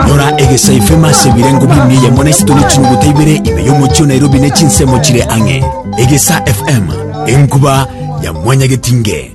Rora egesaifu emase ebirengo bimia eyemo na isiko ne chinyuguta ibere ime y'omochie o Nairobi ne chinsemo chire ang'e. Egesa FM, enkuba ya mwanyagetinge.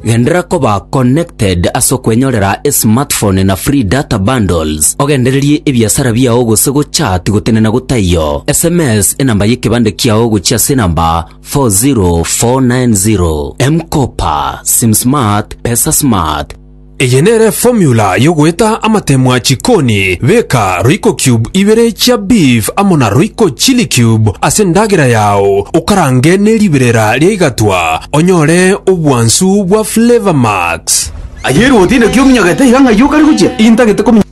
Genderera koba connected ase okwenyorera esmartphone na free data bundles, ogendererie ebiasara biao gose gochat gotenena gotaiyo, sms enamba y'ekebande kiao gochia ase enamba 40490 M-Kopa, Sim Smart, Pesa Smart. Eye nere formula yogoeta amatemwa chikoni, beka royco cube ibere chia beef amo na royco chili cube ase endagera yao okarange ne riberera ria igatwa onyore obwansu bwa flavor max. Aye erwoti inaki ominyogete iga ng'ai okare gochia? Intagete kominyogete.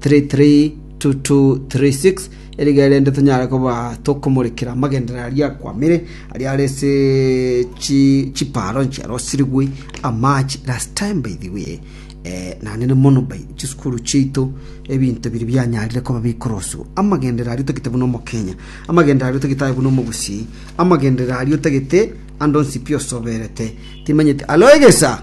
332236 Erige rende tonyare koba tokomorekera amagenderero aria akwamire, aria are ase chi chiparo nchiarosirigwe amache last time by the way. Eh, nanene mono by chisukuru chiaito ebinto biri bianyarire koba bikoroswa amagenderero aria otagete buna omokenya amagenderero aria otagete aye buna omogusii amagenderero aria otagete ande onsi pi osoberete timanyete alo egesa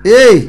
Hey!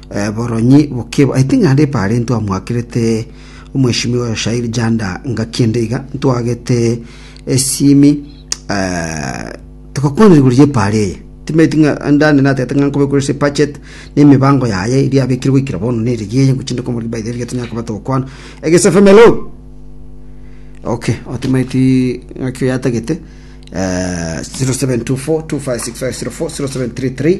Boronyi bokeba I think naende epaara intwamwakerete omweshimiwa oyo Shairi Janda ngaki ende iga ntwagete esimi eh, togakwana iguru y'epaara eye timeti ng'a ndande natete ng'a nkobe kore ase budget na emibango yaye eria abekire goikera bono na erigi eye ngochi nde komorigi by the way riria tonyare koba togokwana egesefemelo okay otimaiti ng'aki oyatagete eh, 0724 256504 0733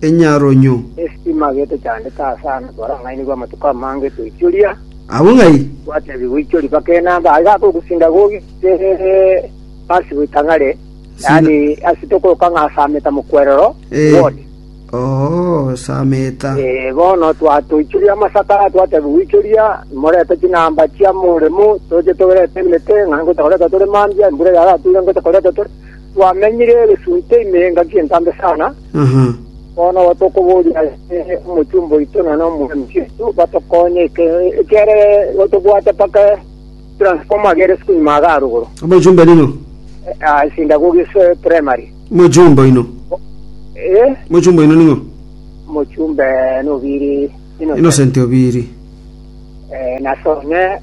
enyaronyo. Estima gete chandete ase ano twarang'ainigwe amatuko amange toichoria. Abwo ng'ai? Twatebigwa ichori mpaka enamba aye gakogusinda gogite ase goitang'are, yaani ase tokoroka ng'a sameta mokwerero Eh. word. Oo, sameta. Eh, bono twa- toichoria amasaka twatebigwa ichoria morete chinamba chia moremo toche toberete emete ng'a ngote koreta tore mambia embura yarature ngote koreta tore Twamenyire egesunte ime engaki entambe sana, bono igo tokoboria ase omochumba oito na nomwami Kristo batokonye eke- ekere igo tobwate mpaka transformer agere isiko ime iga arogoro. Omochumba ning'o? Ah, sinagogi ase primary. Omochumba oino. Eh, Omochumba oino ning'o? mochumbe nobiri Innocent. Innocent Obiri. Eh, nasome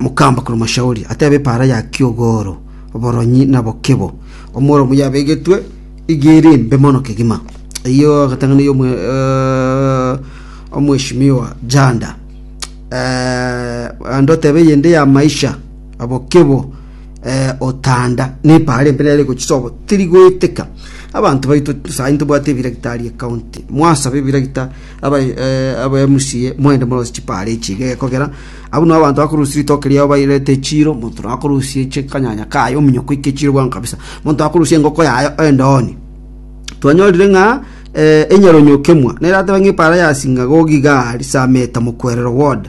Mokamba korwa Mashauri atebe epaara ya kiogoro, oboronyi na bokebo, omworomo yabegetwe iga ere embe mono kegima. Eyio agatang'ana yo Omweshimiwa Janda. Eh, ande otebe eyende ya maisha, abokebo, eh, otanda ne epaara embe nere gochisobo teri goeteka. Abanto baito sai ntobwate ebiragita aria county. Mwasabe ebiragita abemusie moende morose chipaare echi iga egekogera. Abwo nabo abanto bakorusia ritoke riao bairete echiro, monto na akorusia chi- kanyanya kaye, ominyoko oike echiro bwango kabisa, monto na akorusia engoko yaye endooni. Twanyorire ng'a eh, enyaronyokemwa nerateba ng'a epaara ya sinagogi igaa risamete mokwerero word.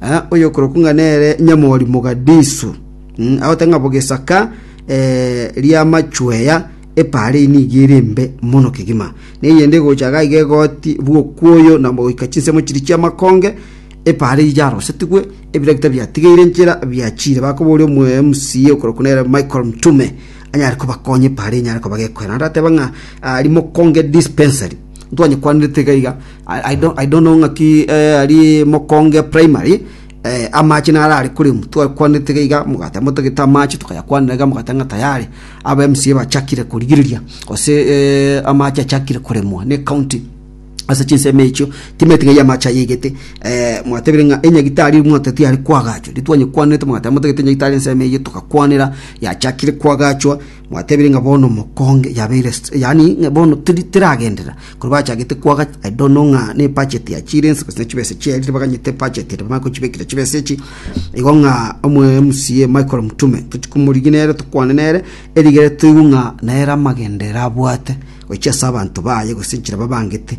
Ah, oyokorokwa ng'a nere nyamori mogadisu mm, agoteba ng'a bogesaka eh, ri'amachweya epaara eye nigo ere embe mono kegima na eyende egocha iga iga egoti bw'okwoyo na goika chinsemo chiria chi'amakonge epaara eyio yarosetigwe ebiragita biatigeire enchera biachire bakoboria omwe MCA okorokwa nere Michael Mtume anyare kobakonya epaara enyare koba gekoera naende ateba ng'a ah, rimokonge dispensary ntwanyekwanirete iga iga I don't, I don't know ng'aki eh, ari mokonge primary eh, amache nara ari kurimu twakwanete gaiga mugate motagete amache tukayakwanera ga mugate ng'a tayari aba MCA bachakire kurigiriria ose eh, amache achakire kuremwa ne county ase chinsemo echio timeti ng'ai amache ayegete eh, mwatebire ng'a enyagitari mwateti yari kwagachwa ritwanye kwanete mugate motagete enyagitari ensemo eye tukakwanera yachakire kwagachwa Mwatebirie ng'a bono mokonge yabeire st, yaani ng'a bono teri teragenderera. Korwa bachagete kwaga, I don't know ng'a ne budget yachiire ense gose ne chibesa chiaerire baganyete budget ere bamanye kochibekera chibesa echi. Igo ng'a omo MCA Michael Mutume tochi komorigia nere tokwane nere erigere toigwe ng'a nere amagenderero abwate gochia ase abanto baye gose enchera babangete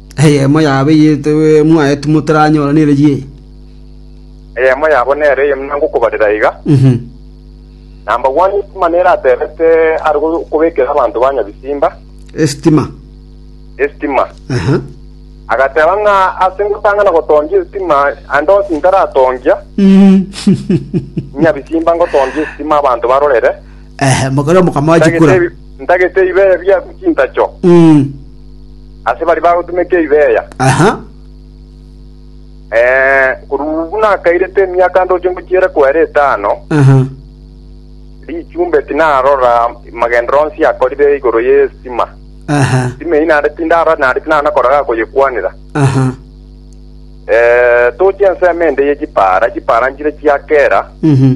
“Eyemo yabo eyio mwaetwe motaranyora nere yi?” Eyemo yabo nere eye nangokobarera iga, Nambagwani esitima nere aterete are kobekera abanto ba nyabisimba esitima, esitima. Agateba ng'a ase ngotang'ana gotongia esitima aende onsi intaratongia, nyabisimba ngotongia esitima abanto barorere, ntagete ebibe bia chintacho. Ase baria bagotumeka ebi beya, Aha. eh, korwa buna akairete emiaka ndoche ngochiere kwere etano, Aha. richumbe tinarora magendero onsi akorire igoro y'estima. Aha. Estima eyi naende tindarora naende tinana koraga koyekwanera. Aha. Eh, toche ensemo ende ye chipara, chipara nchire chiakera, Mhm.